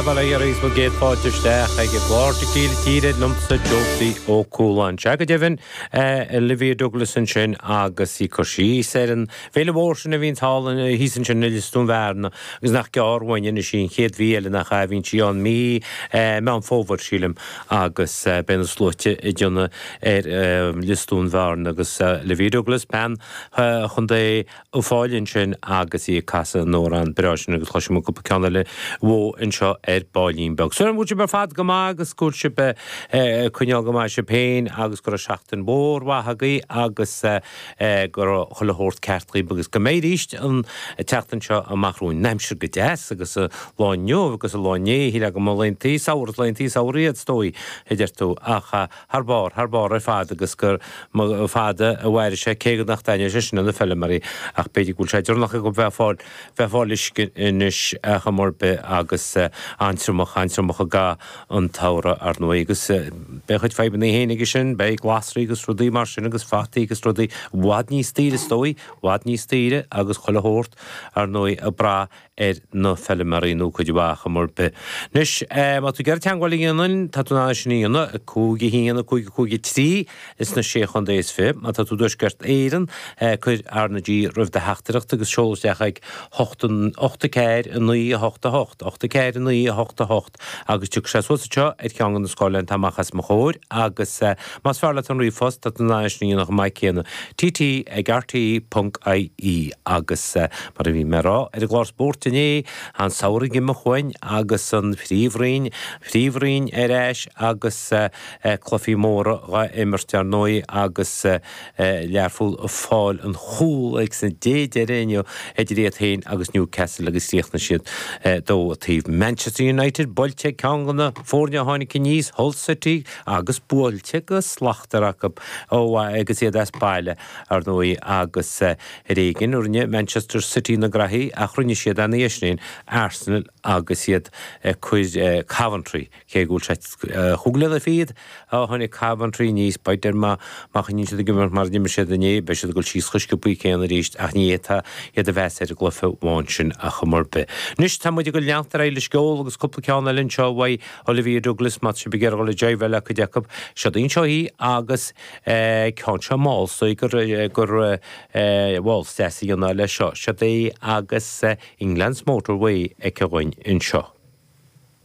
Bail ó Dhia oraibh agus céad fáilte isteach ag Tequila Tíre liomsa Josie Ó Cualáin. Sea go deimhin, Olivia Douglas ansin agus í ag cur síos ar an bhféile mhór sin a bhíonn thall, thíos ansin i Lios Dún Bhearna agus nach gearr uainn anois í, an chéad mhí eile nach ea a bhíonn sí ann, mí Meán Fómhair sílim agus beidh na sluaite ag déanamh ar Lios Dún Bhearna agus Olivia Douglas, bean Chontae Uíbh Fhailí ansin agus í ag casadh an amhrán breá sin agus cloisfidh muid cúpla ceann eile uaithi anseo ar ballín beag. Súil agam go bhfuil sibh ar fad go maith agus go bhfuil sibh ag coinneáil go maith sibh féin agus go raibh seachtain mhór mhaith agaibh agus go raibh chuile shórt ceart agaibh agus go mbeidh arís an tseachtain seo amach romhainn. An aimsir go deas agus an lá inniu agus an lá inné, thar a bheith go maith, laethanta samhraidh, laethanta samhraidh iad is dóigh a deir tú ach. thar barr, thar barr ar fad agus go mba fada a mhairfidh sé cé nach dtaitneoidh sé sin le na feilméaraí ach b'fhéidir go bhfuil sé deireanach acu a bheith ag fáil, bheith ag fáil uisce anois ar chuma ar bith agus an-triomach, an-triomach i gcaitheamh an tsamhraidh ar ndóigh agus beidh a chuid fadhbannaí féin aige sin, beidh glasraí agus rudaí mar sin agus fataí agus rudaí i bhfad níos daoire is dóigh, i bhfad níos daoire agus chuile shórt ar ndóigh ag brath ar na feilméaraí nó cuid mhaith acu, ar chuma ar bith. Anois, má tá tú ag iarraidh teagmháil a dhéanamh linn, tá tú in ann é sin a dhéanamh, 5 1 5 5 3, ins na sé chontae is fiche. Má tá tú i dTuaisceart Éireann, cuir R na G roimh do theachtaireacht agus seol isteach ag hocht 8 4 9 8 8, hocht a ceathair a naoi a hocht a. Agus tiocfaidh sé suas anseo ar cheann de na scáileáin atá amach os mo chomhair agus, más fearr leat an ríomhphost, tá tú in ann é sin a dhéanamh chomh maith céanna, TT ag RTÉ.ie. Agus, mar a bhí mé a rá ar an gclár spóirt inné, an samhradh imithe uainn agus an Phríomhroinn, Phríomhroinn ar ais agus cluichí móra dhá imirt, ar ndóigh, agus, Learpholl ag fáil an chúl ag san dé deireadh inniu idir iad féin agus Newcastle agus chríochnaigh siad 2 a taobh. Manchester United buailte ag ceann de na foirne a tháinig aníos, Hull City agus buailte go slachtmhar acu chomh maith agus iad as baile, ar ndóigh agus ar éigin rinne Manchester City na graithí ach rinne siad ina dhiaidh sin féin. Arsenal agus iad ag cur Coventry. Cé go bhfuil sé chomh glan ar fad, tháinig Coventry aníos, b'fhéidir má choinníonn siad ag imirt mar a d'imir siad inné, beidh siad ag dul síos chomh sciobthaí céanna arís ach ní fhéadfá iad a mheas ar an gcluiche amháin sin ar chuma ar bith. Anois tá muid ag dul leanacht ar aghaidh leis an gceol agus cúpla ceann eile anseo uaidh Olivia Douglas, má tá sibh ag iarraidh dul ag jaibháil le cuid acu, seo daoibh anseo í agus ceann seo mall só gur waltz deas a dhéanamh leis seo, seo daoibh agus England's Motorway aici againn anseo.